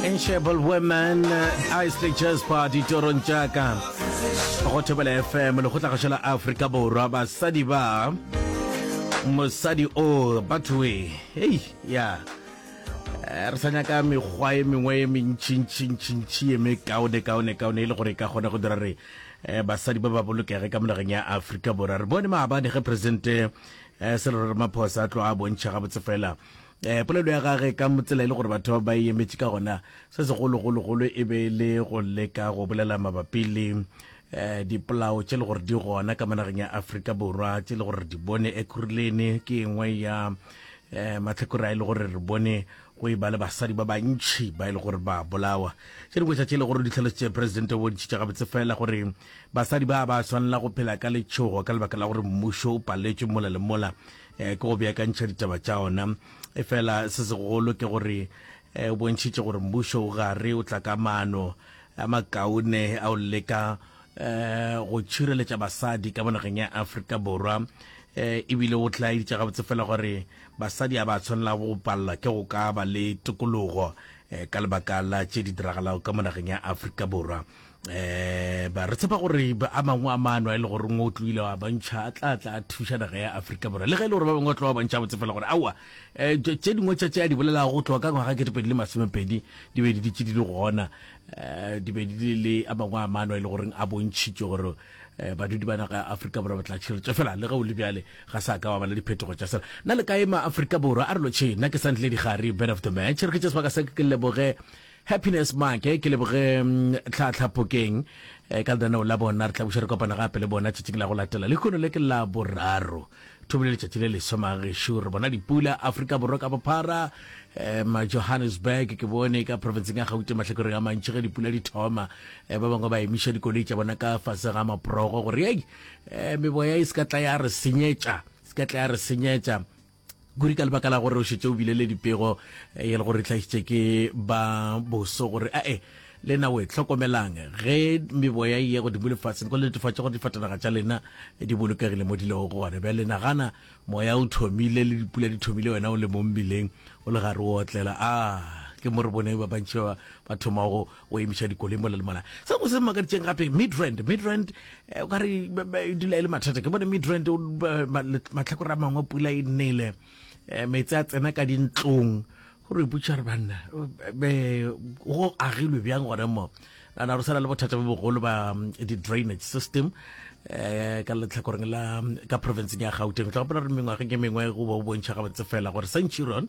Enshable Women, Isley Jasper, ditorong tša ka go thobela fm lekgotlagašo la afrika borwa basadi ba mosadi o bathoe hei ya eh, re sa nyaka mekgwa e mengwe e mentšhintšhintšhintšhi e mekaone kaone kaone e le gore e ka kgona go dira re eh, basadi ba ba bolokege ka monageng ya afrika borwa re bone maabane ge presidente eh, serero ramaphosa a tlo a bontšha gabotse fela Eh, polelo ya gage ka motsela e le gore batho ba e emetše ka gona se segologologolo e be e le go leka go bolela mabapi le eh, dipolao tše le gore di gona ka manageng ya aforika borwa tše le gore re di bone ekurulene ke engwe ya eh, matlhakore a e le gore re bone go e ba le basadi ba bantšhi ba e le gore ba bolawa tše dingwe tša tše e le gore di tlhalositše presidente o bontšhitše gabotse fela gore basadi ba ba swanela go phela ka letšhogo ka lebaka la gore mmušo o paletšwe mola le mola eh, ke go beakantšha ditaba tša ona efela se segolo ke gore eh, o bontšhitše gore mmušo o gare o tla ka maano a makaone a o leka eh, go tšhireletša basadi ka monageng ya aforika borwa um ebile o tla editša gabotse fela gore basadi a ba tshwanela go palela ke go ka ba le tokologo um ka lebaka la tše di diragalago ka monageng ya aforika borwa um ba re tshepa gore a mangwe a maano a e le gore ngwe o tloile wa bantšha a tla tla a thuša naga ya aforika borwa le ge e le gore ba bangwe ba tlo ba bantšha botse fela gore aowa um eh, tše dingwe tša tše a di bolelago go tloga ka ngwaga ke dipedi le masomepedi di be di ditše di le gona um di be di le a mangwe a maano a e le goreng a bontšhitše gore um badudi ba naga ya aforika borwa ba tla tšhiretso fela le ge o le bjale ga sa ka wa bala diphetogo tša sela na le ka ema aforika borwa a re lotšhe nna ke santle digare bed of the match re ke tše sebaka se ke leboge Happiness Maake ke leboge Tlhaatlha Phokeng ka lenaneo la bona. Re tla buša re kopana gape le bona tšatšing la go latela lehono le ke la boraro thobo le letšatši le leswa magešo. Re bona dipula Afrika Borwa ka bophara ma Johannesburg ke bone ka provinceng ya Gauteng mahlakoreng a mantši ge dipula di thoma ba bangwe ba emiša dikoloi tša bona ka fase ga maprogo gore ei meboya e se ka tla ya re senyetša se ka tla ya re senyetša Kuri ka lebaka la gore o šetše o bile le dipego e le gore hlagišitše ke ba boso gore a e le na we hlokomelang ge meboya ye go dimole fatshe go netefatša gore difatanaga tša lena di bolokegile mo di lego gona bja lena gana moya o thomile le dipula di thomile wena o le mo mbileng o le gare o otlela a ke mo re bone ba bantši ba ba thomago go emiša dikoloi mola le mola se go se makaditšeng gape midrand midrand eh, o ka re e dula e le mathata ke bone midrand matlhakore a mangwe pula e nnele eh, metse a tsena ka dintlong go re butša re banna go agilwe bjang gone mo ana re sala le bothata bo bogolo ba mm, di-drainage system um ka letlhakoreng la mm, ka provinceng ya gauteng tla gopola re mengwageng e mengwe go bo bontšha gabotse fela gore centurion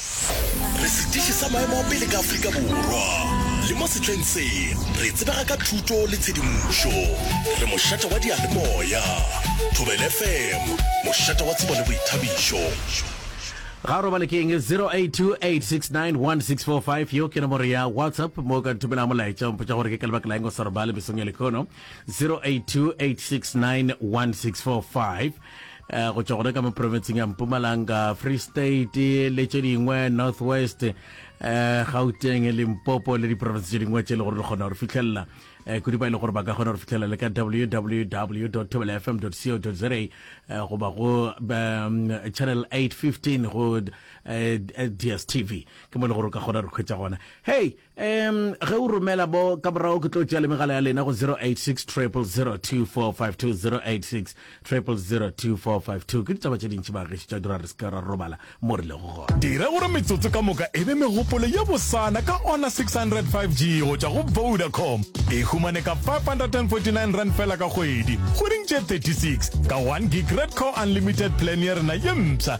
Re setiši sa maemo a pele ka Afrika Borwa, le mo sehleng se re tsebega ka thuto le tshedimošo. Re mošate wa diyalemoya, Thobela FM, mošate wa tsebo le boithabišo. Ga o robale ke eng? 0828691645 yeo ke nomoro ya WhatsApp mo o ka nthomelago molaetša o mpotša gore ke ka lebaka la eng o sa robale mesong ya lekhono 0828691645 eh, go tšwa gona ka mo provinceng ya mpumalanga free state le tše dingwe north west eh, gauteng limpopo le diprovince tše dingwe tše e le gore re kgona gore fitlhelela eh, kudu ba e le gore ba ka kgona gore fitlhelela le ka www tobelafm co za eh, goba go um, channel 815 go eh, dstv ke mo e le gore o ka kgona gore kgwetsa gona hey Um, ge o romela bo ka morago ke tlo tšea le megala ya lena go 086 0002452086 00024520 ke ditaba tše dintši bageši tša dira re seka ra robala mo re lego gona dira gore metsotso ka moka e be megopolo ye bosana ka ona 600 5g go tšwa go vodacom e humane ka 549 rand fela ka kgwedi kgweding tše 36 ka 1 gig red core unlimited plan ya rena ye mpsha